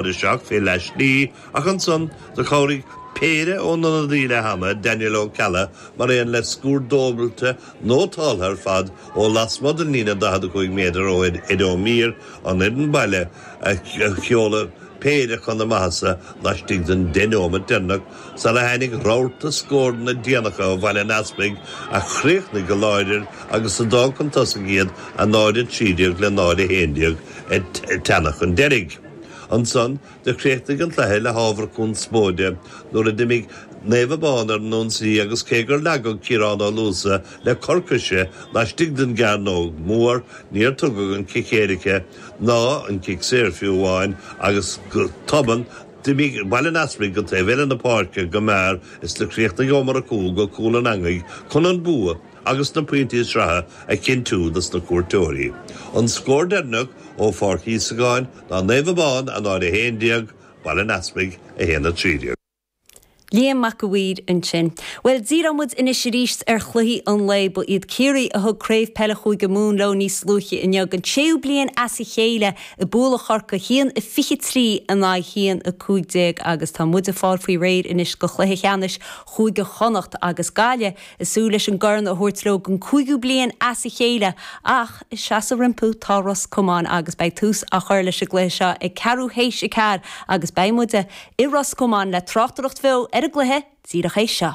Chuir isteach fé leath slí, ach ansan do chabhraigh péire ón ionadaí leath ama, Daniel Ó Ceallaigh, mar aon le scór dúbailte nótálta ar fad ó lasmuigh den líne 45 méadar ó Ed Ó Mír an fhoireann baile a sheoladh péire chun a maitheasa laistigh den deich nóimeat deireanach sar a tháinig rabharta scóranna déanacha ó Bhaile an Easpaig a chríochnaigh go láidir agus a d'fhág chun tosaigh iad 0:13 le 0:11 ag teannadh chun deiridh. Ansan do chríochnaigh an cluiche le hábhar conspóide nuair a d'imigh Naomh Abán ar an ionsaí agus cé gur leagadh Ciarán Ó Luasa le cor coise laistigh den gcearnóg mhór níor tugadh an cic éirice ná an cic saor fiú amháin agus go tobann d'imigh Baile an Easpaig go taobh eile na páirce go mear is do chríochnaigh Ó Murchú go cúl an eangaigh chun an bua agus na pointí sraithe a chinntiú dos na cuairteoirí. An scór deireanach ó Pháirc Íosagáin ná Naomh Abán, 0-11, Baile an Easpaig, 1-13. Liam Mac a' Mhaoir ansin. Bhuel, díreoidh muid anois arís ar chluichí an lae. Ba iad Ciarraí a thug Craobh Peile Chúige Mumhan leo níos luaithe inniu, an séú bliain as a chéile ag bualadh Chorcaí, 1-23 in aghaidh 1-15, agus tá muid ag fáil faoi réir anois do chluiche ceannais Chúige Chonnacht agus Gaillimh. Ag súil leis an gcorn a thabhairt leo don chúigiú bliain as a chéile ach ag seasamh rompu tá Ros Comáin agus beidh tús á chur leis an gcluiche seo ag ceathrú théis a ceathair agus beidh muide i Ros Comáin le tráchtaireacht bheo ar an gcluiche díreach théis seo.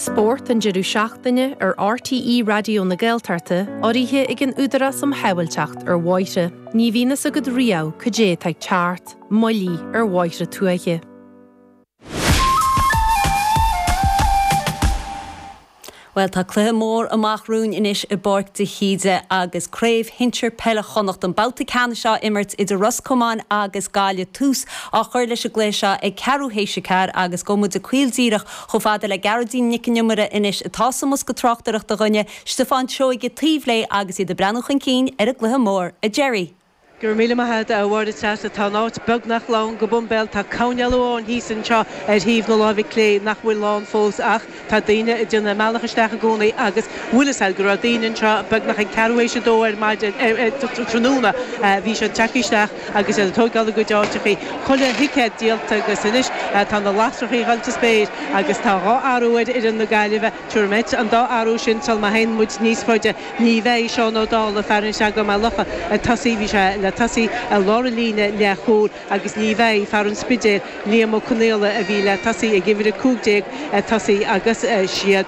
Spórt an deireadh seachtaine ar RTÉ Raidió na Gaeltachta, urraithe ag an Údarás um Shábháilteacht ar Bhóithre. Ní bhíonn fhios agat riamh cad é atá ag teacht, moilligh ar bhóithre tuaithe. Bhuel tá cluiche mór amach romhainn anois i bPáirc de hÍde agus Craobh Shinsir Peile Chonnacht, an babhta ceannais á imirt idir Ros Comáin agus Gaillimh. Tús á chur leis an gcluiche seo ag ceathrú théis a ceathair agus gabhfaidh muid caol díreach Chomh fada le Gearóidín Nic an Iomaire anois atá sa mbosca tráchtaireachta dhúinne, Stiofán Seoige taobh léi agus iad ag breathnú chun cinn ar an gcluiche mór, a Gerry! Go raibh míle maith agat, a Mháire Treasa. Tá an áit beagnach lán go boimbéal. Tá coirnéal amháin thíos anseo ar thaobh na láimhe clé nach bhfuil lán fós ach tá daoine ag déanamh a mbealach isteach i gcónaí agus bhuel is cosúil go raibh daoine anseo beagnach ag ceathrú théis a dó ar maidin, ar, tráthnóna. Bhí siad ag teacht isteach. agus iad ag tógáil a gcuid áiteachaí. Chuile thicéad díolta agus anois tá na lasrachaí ag goil sa spéir agus tá dhá athrú ar fhoireann na Gaillimhe. Tabharfaidh muid an dá athrú sin sul má théann muid níos faide ní bheidh Seán Ó Dálaigh, fear an Chreagáin Maigh Locha, ag tosaí. Bhí sé le tosaí i lár an líne leath chúil agus ní bheidh fear an Spidéil, Liam Ó Conghaile, a bhí le tosaí ag uimhir a cúig déag, ag tosaí agus siad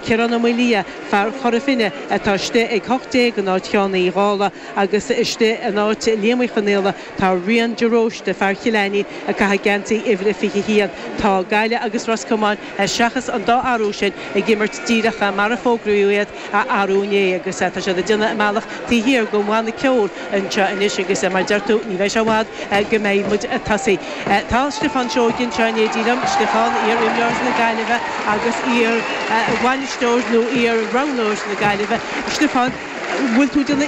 Ciarán Ó Maolaodha, fear Chora Finne, atá istigh ag hocht déag in áit Sheáin Uí Dhálaigh. Agus istigh in áit Liam Uí Chonghaile tá Rian de Róiste, fear Chill Ainnín a chaithfidh geansaí uimhir a 21. Tá Gaillimh agus Ros Comáin, seachas an dá athrú sin, ag imirt díreach mar a fógraíodh iad arú inné agus tá siad ag déanamh a mbealach taobh thiar den bhanna ceoil anseo anois agus mar a deir tú, ní bheidh sé i bhfad go mbeidh muid tosaithe. Tá Stiofán Seoige anseo in éindí liom. Stiofán, iar-imreoir na Gaillimhe agus iar-bhainisteoir nó iar-roghnóir na Gaillimhe. Stiofán, bhfuil tú de na.